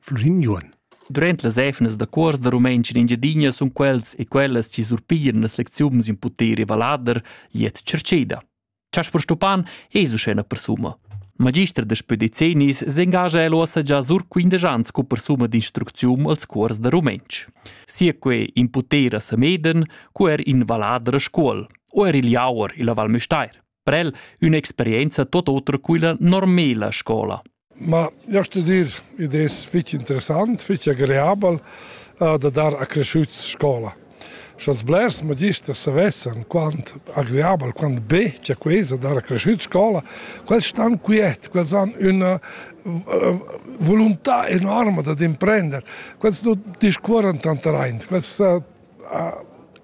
Flrin Juon. Durant las efnas da cuors da rumentsch in Engiadina sun quels e quellas chi surpiran las lecziuns in puter e vallader gliet tschartscheda. Chasper Stupan es uschè na persuma. Magister da spö decennis s'engagia el uossa già sur quindesch ans cu persuma d'instrucziun als cuors da rumentsch. Sia que in puter a Sameden, cu er in vallader a Scuol, o er il Jauer illa Val Müstair. Prel ün'experienza tot oter quilla normela scola. Ma io studir id es fich interessant, fich agreabel uh, da dar a cresciuts scola. Sch'als blers magisters savessan quant agreabel, quant be c'è quesa dar a cresciuts scola, quels stan quiet, quels han una eh, volontà enorme da imprender, quels non discuoran tant raint, quels uh,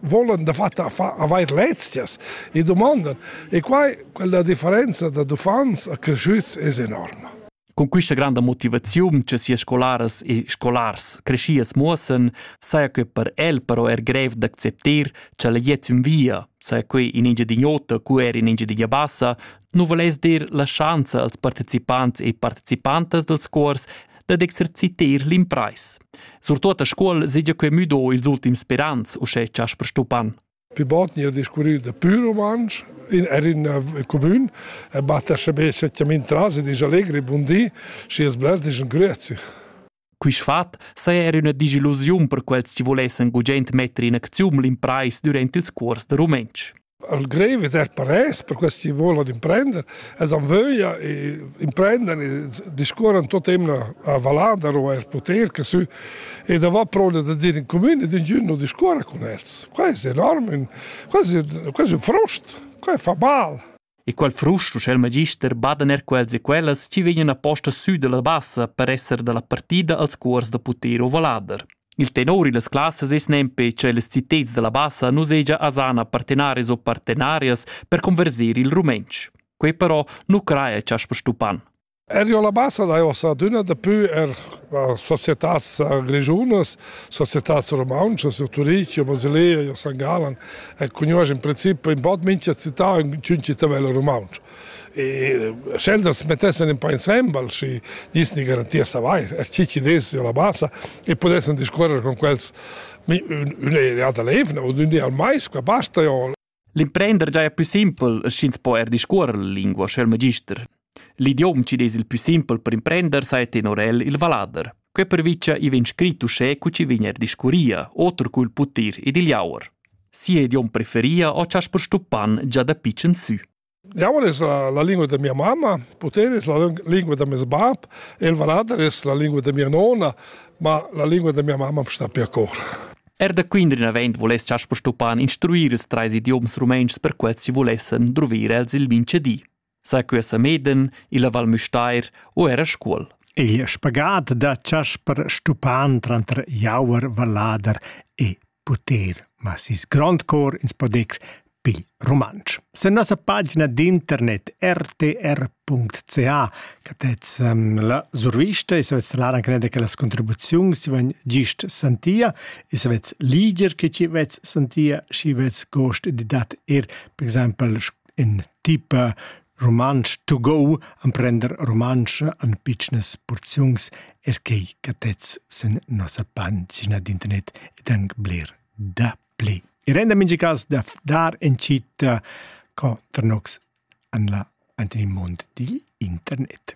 volan dafatta avair lezias e domandan. E quai, quella differenza da uffants a cresciuts es enorma. Con questa grande motivazione che sia scolaras e scolars crescias muossen, saja que per el però er grev d'acceptar che la jet in via, saja que in Engiadinhota cu er in Engiadinha Bassa, nu voless dir la schanza als partecipants e participantas dels cors dad exercitar l'impreis. Surtut a scuol segia quei müdo ils ultims sperans, uschè Chasper Stupan. Pi bot ni a discurrir da pur rumantsch in, er in uh, comun e batta sebe settiamin tras e dis allegri bundi și es bless dis un grüezi. Quist fat saja er üna disillusiun per quels chi volessen gugent metter in acziun l'impreis durant ils cuors da rumentsch. al grev es eir paress per quels chi voulan imprender, els han vöglia e imprendan e discuorran tuot emna a Valladar o eir poter che sü e davò proda da dir in cumün ed ingün nu discuorra cun els. Quai es enorm, quasi quasi ün frust, quai fa mal. E quel frust uschè il magister badan er quels e quellas chi vegnan aposta sü dalla bassa per esser dalla partida als cuors da Puter o Valladar. Il tenor illas classas es nempe cha illas citeds da la Bassa nu seja asana partenarias o partenarias per converser il rumentsch. Quei però nu craja cha as stupan. Erio la Bassa da ossa adüna dapü er societats grischunas, societats rumauntschas, o Turich, o Basilea, o San Galan, e cugnuosch in princip in bod mincha città ün città vela rumaunsch. E sch'els as mettessen in po insembel, schi disni garantir savair, er chi chi desi la basa, e pudessan discorrer con quels üna ereata levna o d'ün di al mais, qua basta jo. L'imprender giaja pü simpel, sch'ins po er discuorrer la lingua, sch'el magister. L'idiom chi des il pü simpel per imprender saja tenor el il valader. Que pervicia i vegn scrit uschè cu chi vegn er discurria, oter cul putir ed il jauer. Sia idiom preferia o chas per stuppan già da pitschen sü. Jau es la lingua da mia mamma, puter es la lingua da meis bap, el valader es la lingua da mia nona, ma la lingua da mia mamma sta per cor. Er da Quindrin avend voless Chasper Stopan instruir ils trais idioms rumentschs per quels chi volessen druvir els il minchedi. Sa que a Meden, illa Val Müstair o era Scuol. Il spagat da Chasper Stupan tranter Jauer Vallader e poter, ma sis grond cor ins podec pigl rumantsch. Sen nossa pagina d'internet rtr.ca catez um, la survista e se vez lar anche nede che las contribuzioni si van gist santia e se vez liger che ci vez santia si vez gost di dat er per esempio in tipe Rumantsch tugou emprender rumantsch en pitschnas purziuns, er quei cattets sin nossa pagina d'internet ed anc bler dapli. I renda mintga cas da dar en citta co tranox en la Anthony Mund digl internet.